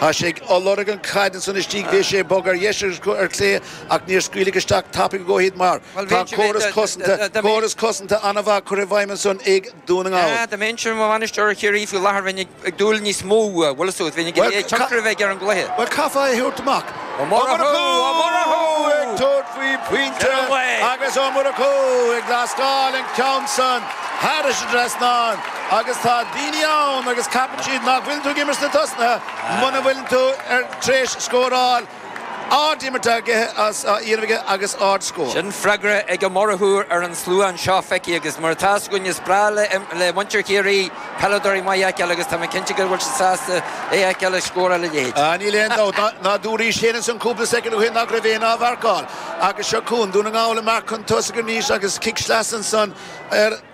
Tá sé ag lorg an caid ansan istigh, bhí sé ag bogadh ar dheis agus ar chlé ach níor scaoileadh isteach tapaidh a dhóthain mar tá córas cosanta, córas cosanta an-mhaith curtha i bhfeidhm ansan ag Dún na nGall. Dá mbeinnse i mo bhainisteoir Chiarraí faoi láthair, bheinn ag dúil níos mó uaidh, Mheehan is tú, bheinn ag iarraidh tionchar a bheith ar an gcluiche. Bhuel caithfeá é a thabhairt amach. Ó Murchú ag tabhairt faoi pointe agus Ó Murchú ag lascadh an ceann san thar an trasnán. Agus tá daoine ann agus ceapann siad nach bhfuil tú ag imirt sna tosaithe muna bhfuileann tú tar éis scóráil ard-imirt á dhéanamh aige agus ard-scór. Sin freagra ag an Murchúch ar an slua anseo, feicfidh, agus mar atá a fhios againn, is breá le muintir Chiarraí peileadóirí maith a fheiceáil agus tá mé cinnte go bhfuil siad sásta é a fheiceáil ag scóráil a leithéid. Ah, níl aon dabht, nár dhúraís féin ins an cúpla soicind ó shin nach raibh éinne á mharcáil. Agus seo chugainn Dún na nGall amach chun tosaigh arís agus cic sleasa ansan ar.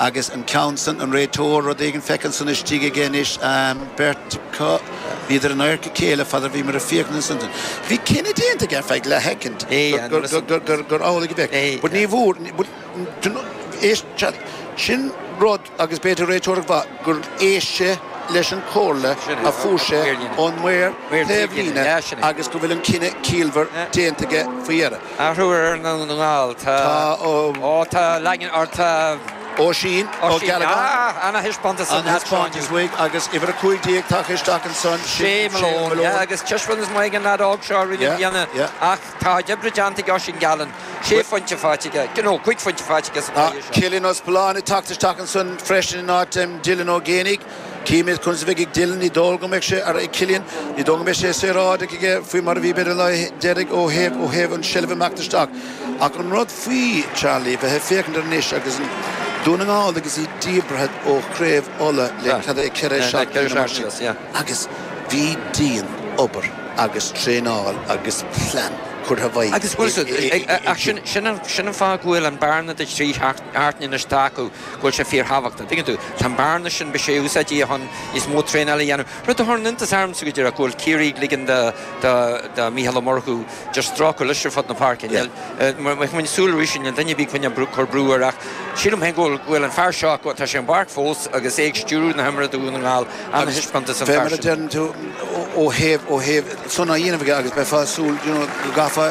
Agus an ceann san, an réiteoir, rud éigin, feicthe ansan istigh aige anois, ahem, beirt acu, bhíodar in adharca a chéile fad a bhíomar ag féachaint ansan, bhí cinneadh déanta aige ar feadh leathshoicind gur, gur amhlaidh a bheadh, but ní bhfuair, but, éist, chan, sin rud agus b'fhéidir réiteoireacht mhaith gur éist sé leis an chomhairle a fuair sé ón maor taobhlíne agus go bhfuil an cinneadh ciallmhar déanta aige faoi dheireadh. Athrú ar an nGall, tá. Tá ó. Ó, tá Laigin or tá. Oisín Ó Gealacáin. Oisín, ana-thaispeántas an-thaispeántas uaidh agus uimhir 15 tagtha isteach ansan, Shay Malone, yeah, agus taispeántas maith ag an leaid óg seo arís i mbliana ach tá lá oibre déanta ag Oisín Gallen, sé phointe faighte aige, you know, cúig phointe faighte aige sa bhliain seo. Cillian Ó Spealáin ag teacht isteach ansan freisin in áit Dylan Ó Géibheannaigh. Chímid conas a bheidh ag Dylan, ní dóigh liom go mbeidh sé ar, ag Cillian, ní dóigh liom go mbeidh sé saoráideach aige faoi mar a bhí b'fhéidir an lá deiridh ó thaobh, ó thaobh an seilbh ag imeacht isteach. Ach an rud faoi, Charlie, a bheith ag féachaint air anois agus an, Dún na nGall agus iad díbeartha ó Chraobh Uladh le cad é ceithre seachtaine nó mar sin agus bhí dianobair agus traenáil agus plean curtha i bhfeidhm agus bhuel, sin, sin an fáth go bhfuil an bearna de thrí sheachtaine. Thart anois atá acu, go bhfuil sé fíorthábhachtach. Tuigeann tú? Tá an bearna sin, a bheith ag úsáid é chun níos mó traenáil a dhéanamh. Rud a chuireann iontas ormsa, go díreach, go bhfuil Ciarraí ag ligean do, do, do Mhícheál Ó Murchú just strácadh leis ar fud na páirce. Níl, níl, mé ag coinneáil súil arís ar an duine a bhí ag coinneáil brú, cur brú air ach sílim féin go bhfuil, go bhfuil an fear seo, go, tá sé ar an bpáirc fós agus é ag stiúradh na himeartha do Dhún na nGall. Ana-thaispeántas an fear sin. Bheadh, mar a deireann tú, ó thaobh, ó thaobh, sona á dhéanamh aige agus bheifeá ag súil, you know, go gcaithfeá,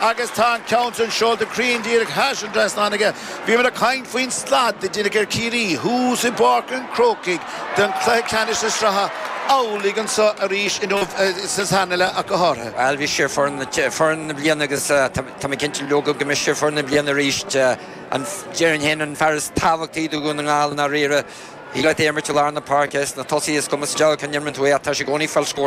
Agus tá an ceann san seolta cruinn díreach thar an trasnán aige. Bhíomar ag caint faoin slad a deineadh ar Chiarraí thuas i bPáirc an Chrócaigh don chluiche ceannais na sraithe, amhlaidh anseo arís inniu agus san anaile acu go háirithe. Bhuel, bhí siad foireann na bliana agus tá mé cinnte leoga go mbeidh siad foireann na bliana arís. Déarfainn féin an fear is tábhachtaí do Dhún na nGall i ndáiríre, thig leat é a imirt i lár na páirce, sna tosaithe, is cuma sa diabhal cá n-imreann tú é ach tá sé i gcónaí ag fáil scóranna.